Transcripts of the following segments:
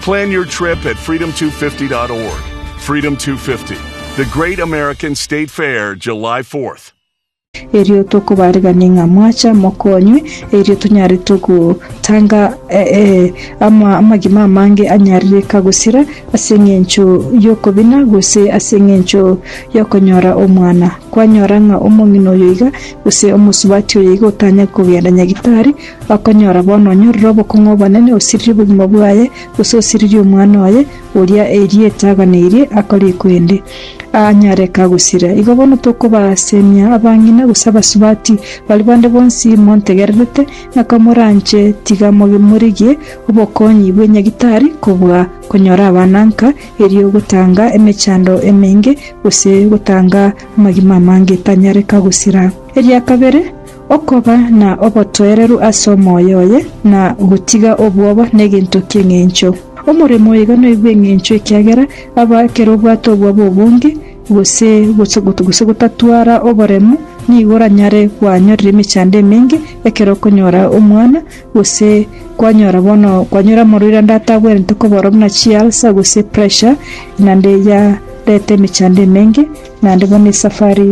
Plan your trip at freedom250.org. Freedom 250, the great American state fair, July 4th. erio tokobareganie ng'a mwacha mokonywe, erio tonyare togotanga eh, eh, ama, amagima amange anyarereka gosira ase eng'encho y'okobina gose ase eng'encho y'okonyora omwana. Kwanyora ng'a omong'ina oyo iga gose omosubati oyo iga otanya kogenda nyagitari, Bakonyora bono onyorire obokong'u obonene, osiririe obogima bwaye, gose osiririe omwana oye, oria erieta aganeirie akore ekwende, aanyaareke agosira. Igo bono tokobaasemia abang'ina gose abasubati, baria bande bonsi montegererete, na komoranche, tiga morigie obokonyi bwe nyagitari kobua konyora abana nka, erio gotanga emechando emenge, gose gotanga amagima amange etanyareka gosira. Eria kabere, Okoba na obotoereru ase omoyo oye, na gotiga obwoba negento ki'engencho. Omoremo oigo noigwe engencho ekiagera aba ekero obwate obwoba obonge, gose gose gotatwara oboremu, nigo oranyare kwanyorera emechando emenge ekero okonyora omwana, gose kwanyora bono kwanyora omorwaire ande atagwenerete koborwa buna chialsa gose pressure, naende yareta emechando emenge. Naende bono esafari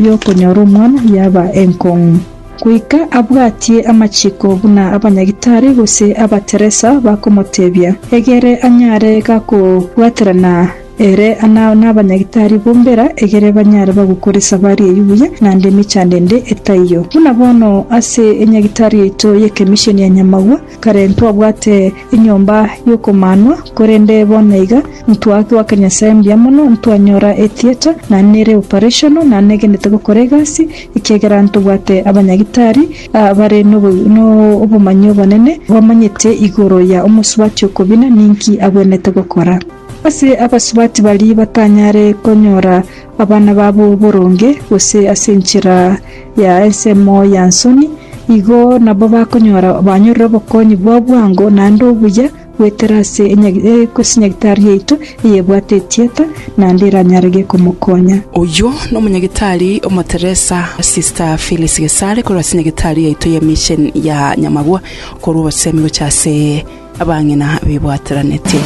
y'okonyora omwana yaba enkong'u. Goika abwatie amachiko buna abanyagitari gose abateresa bakomotebia, egere anyare gakobwaterana ere nabanyagitari bombera, egere banyare bagokora esafari eyio buya naende emechando ende etaiyo. Buna bono ase enyagitari yaito y'ekemiseni ya Nyamagwa, Kare ntwabwate enyomba y'okomanwa, korende bono iga ntwatwaka Nyasae mbuya mono, ntwanyora etheatre, na nere operational, na negenete gokora egasi, ekiagera ntobwate abanyagitari abare nobomanyi obonene, bamanyete igoro ya omosubati okobina ninki agwenerete gokora. Ase abasubati baria batanyare konyora abana babo boronge, gose ase enchera ya ensemo ya nsoni, igo nabo bakonyora banyorire obokonyi bwa bwango naende obuya goetera ase enyagitari yaito eyebwate etieta, naende eranyare gekomokonya. Oyio nomonyagitari omoteresa Sister Phyllis Gesare korwa ase enyagitari yaito ye Mission ya Nyamagwa, okorwa obosemi gocha ase. Abang'ina bibwateranetie.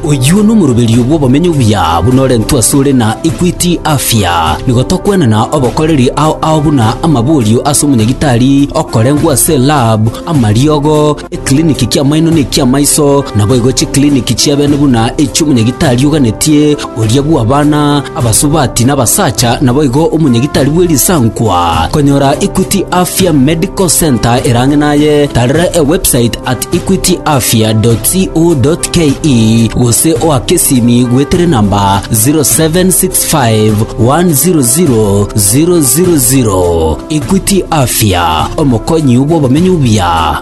Oyio nomoroberio bw'obomenyo buya buna orentwe asore na Equity Afya. Nigo tokwenana obokoreri ao ao buna amaborio ase omonyagitari okorengwa ase lab, amariogo, eclinic ki'amaino ne ki'amaiso, naboigo chiclinic chi'ebene buna echi'omonyagitari oganetie, Oria bw'abana abasubati n'abasacha naboigo omonyagitari bwe risankwa. Konyora Equity Afya Medical Centre erang'e naye, tarera ewebsite at equityafya.co.ke gose oake esimi gwetere namba 0765 100 000. Equity Afya, omokonyi bw'obomenyo buya.